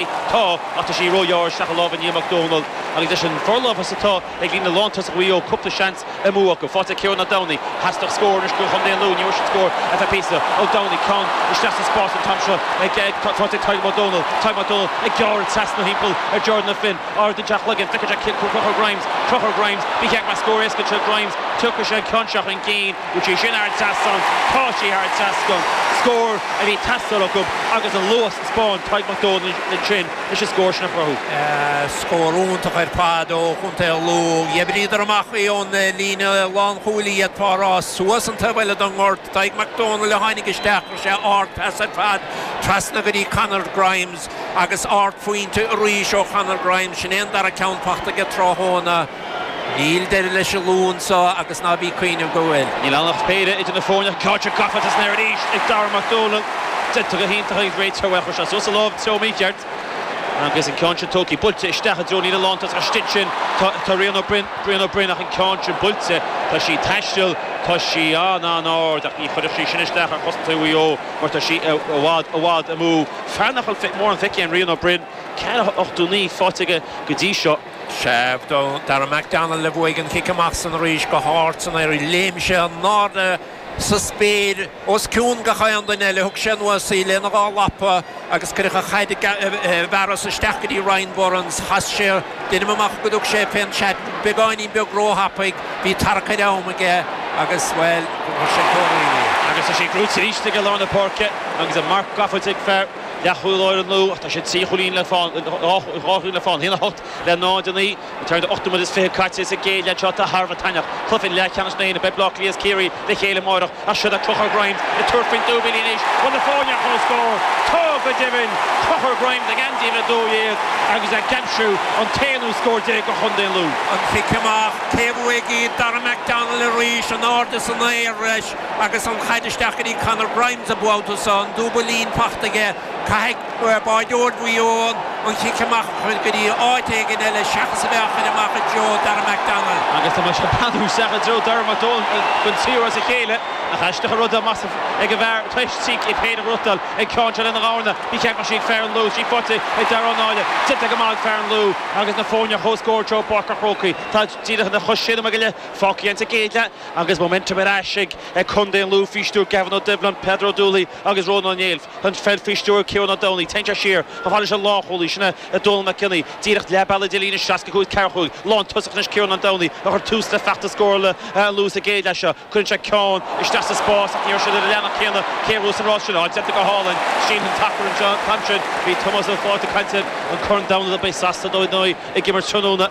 Tá, ach tá sí róghearr isteach i lámha Niall Mac Dómhnaill agus leis an bhforlámhas atá ag líne lántosach Mhaigh Eo cúpla seans amú acu. Faighte ag Ciarán Ó Domhnaigh, theastódh scór anois ó Chontae an Lú, ní bhfuair siad scór ar feadh píosa. Ó Domhnaigh, ceann isteach sa spás an t-am seo faighte ag Tadhg Mac Dómhnaill. Tadhg Mac Dómhnaill ag gearradh trasna thimpeall ar Jordan Ó Floinn, ardaíonn sé a chloigeann, feiceann sé Conchúr Grimes, Conchúr Grimes, bíodh sé ag brath scór éasca anseo Grimes, tiocfaidh sé an ceann seo chun cinn. Bhfuil sé sin thar an trasnán? Tá sé thar an trasnán. Scór a bhí ag teastáil acu agus an luas a spáin Tadhg Mac Dónaill ansin leis an scór sin a chruthú. Scór iontach ar fad ó Chontae an Lú. D'oibríodar amach í ón líne lánchúil, iad fá rá suas an taobh eile den ghort. Tadhg Mac Dónaill a tháinig isteach, chuir sé ardphas ar fad trasna go dtí Conor Grimes agus ardphointe arís ó Chonor Grimes. Sin é an dara ceann fachta aige tráthnóna. Níl deireadh leis an Lú anso agus ná bí 'cuimhneamh go bhfuil. Níl ann ach péire idir na foirne, an chaid gafa san aer arís ag Darragh Mac Dónaill. Déanta go hiontach ag rté treo é a chur sé suas sa láimh treo mícheart agus an ceann sin tugtha buailte isteach i dtreo na líne lántosaigh istigh ansin. Tá Rian Ó Broin, Rian Ó Broin ach an ceann sin buailte. Tá sí taisteal, tá sí an-an-ard ach ní chuirfidh sí sin isteach ar chosantóirí Mhaigh Eo mar tá sí i i bhfad, i bhfad amú. Fear nach bhfuil mórán feicthe ag Rian Ó Broin, ceann nó dhó faighte aige go dtí seo. Sé Darragh McDonnell a bhuaigh an cic amach san arís go hard san aer. Léim sé in airde sa spéir os cionn gach aon duine eile. Thug sé anuas í lena dhá lapa agus cuireadh an chaid i bhfearas isteach go dtí Ryan Burns. Chas sé deinim amach go dtug sé fén seat beagáinín beag róthapaidh. Bhí tarrac ar am aige agus, bhuel, chuir sé cóir uaidh é. Agus tá sé buaite arís ag lár na páirce agus a marc gafa ag fear. leathchúlaí láir an Lú, ach tá siad trí chúilín le fán, dhá chúilín le fán, a haon a hocht le náid a naoi, tar éis ocht nóiméad is fiche caite sa gcéad leath seo atá thar a bheith taitneamhach. Cluiche leathcheannais na hÉireann, beidh Baile Átha Cliath is Ciarraí le chéile amárach ach siod é Conchúr Grimes ag tabhairt faoin dúbailín anois. Bhfuil na foirne ar chomhscór? Tá go deimhin! Conchúr Grimes ag Andy le dó dhéag agus é ag aimsiú an t-aonú scór déag do chontae Lú. An cic amach, cé a bhuafaidh í? Darragh McDonnell arís, in airde san aer. Agus an chaid isteach go dtí Conor Grimes an babhta seo, an dúbailín faighte aige, caithfidh bádóir Mhaigh Eo an cic amach a chur go dtí áit éigin eile seachas a bheith á chur amach i dtreo Darragh McDonnell. Agus tá mise ag breathnú isteach i dtreo Darragh McDonnell chun triúr as a chéile, nach aisteach an rud é más ag an bhfear toisc cic é féin a bhrúchtail ag ceann seo lena ghamhna. Ní ceart mar sin ag fear an Lú, trí phointe ag Darragh Ó Náille. Déanta go maith ag fear an Lú agus na foirne ar chomhscór anseo i bPáirc an Chrócaigh. Tá díreach anois sé nóiméad go leith fágtha againn sa gcéad. Agus momentum ar ais ag Contae an Lú faoi stiúir Gavin Ó Doibhlin, Peadar Ó Dúlaoich agus Rónán Ó Néill, tá an pheil faoi stiúir Ciarán Ó Domhnaigh, téann sé siar chomh fada leis an lánchúlaí sin é Dónal Mac Cionnaith, díreach leath bealaigh idir líne 65 is 45. Lántosach anois Ciarán Ó Domhnaigh a chuir tús le feachtas scórála an Lú sa gcéad leath seo, cuireann sé ceann isteach sa spás ach ní raibh siad ar an leathanach céanna cé thuas an rás sin á déanamh go hálainn, sin an sacar an ceann sin, bhí Tomás Ó Fátharta ag caint ar an gCorn Domhanda, beidh Sasana ar ndóigh ag imirt tráthnóna.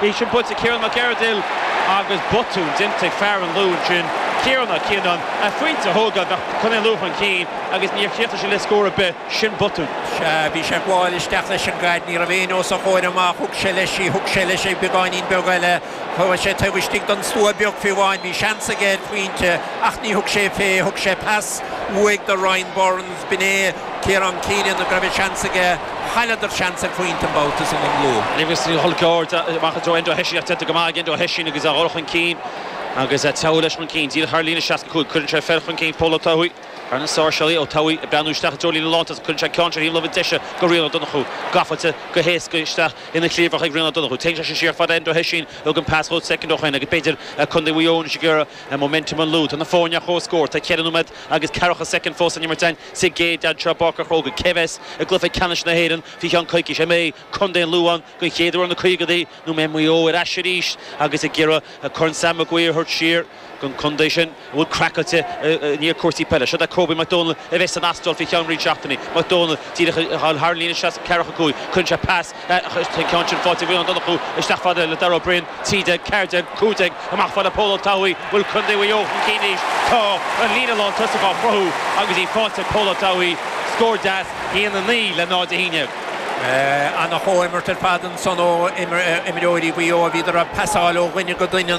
Bhí sin bainte ag Ciarán Mac Ardghail agus botún déanta ag fear an Lú ansin, Ciarán Ó Cianáin. A phointe a thógáil, bheadh Contae an Lú chun cinn agus níor chríochnaigh sé le scór ar bith. Sin botún. Sea, bhí sé ag gabháil isteach leis an gcaid. Ní raibh aoinne os a chomhair amach. Thug sé leis í. Thug sé leis í beagáinín beag eile. Chuaigh sé taobh istigh den stua beag fiú amháin. Bhí seans aige ar phointe, ach ní thug sé fé. Thug sé pas uaidh do Ryan Burns. B'in é Ciarán Keenan. Go raibh an seans aige. Chailleadar seans ar phointe an babhta san i gclú. Agus níl Chill Ceoir amach i dtreo Enda Ó hOisín ach déanta go maith ag Enda Ó hOisín agus ag dul chun cinn agus ag teacht leis chun cinn. Díreach thar líne, 65, cuireann sé fear chun cinn, Pól Ó Tuathaigh, as na Sáirséalaigh. Ó Tuathaigh ag breathnú isteach i dtreo líne lántosach, cuireann sé ceann i dtreo thaobh na láimhe deise go Rian Ó Donnchú. Gafa go héasca isteach ina chliabhrach ag Rian Ó Donnchú. Téann seisean siar fad le Enda Ó hOisín, thug an pas dhó soicind ó shoin agus b'fhéidir Contae Mhuigh Eo anois ag iarraidh momentum an Lú. Tá na foirne ar comhscór, tá ceithre nóiméad agus ceathracha soicind fós san imirt. Sa gcéad leath seo, i bPáirc an Chrócaigh, cé a bheas i gcluiche ceannais na hÉireann faoi cheann coicís, an mbeidh Contae an Lú ann den chéad uair ó na caogaidí, nó an mbeidh Maigh Eo ar ais arís agus ag iarraidh Corn Sam Maguire a thabhairt siar don chontae sin a bhfuil craiceáilte i ndiaidh cúrsaí peile. Seo é Kobe McDonald a bheidh san Astráil faoi cheann roinnt seachtainí. McDonald, díreach ag dul thar an líne, 60, 45, cuireann sé pas Tá an ceann sin faighte ag Rian Ó Donnchú isteach fad le Darragh Ó Broin, 13 14 15 amach fad le Pól Ó Tuathaigh, bhfuil Contae Mhaigh Eo chun cinn anois, tá an líne lántosach á chruthú agus í faighte ag Pól Ó Tuathaigh, scór deas, 1 9 le 0 11. Ana chomhimirt ar fad ansan ó imreoirí Mhaigh Eo bhíodar ag pasáil ó dhuine go duine.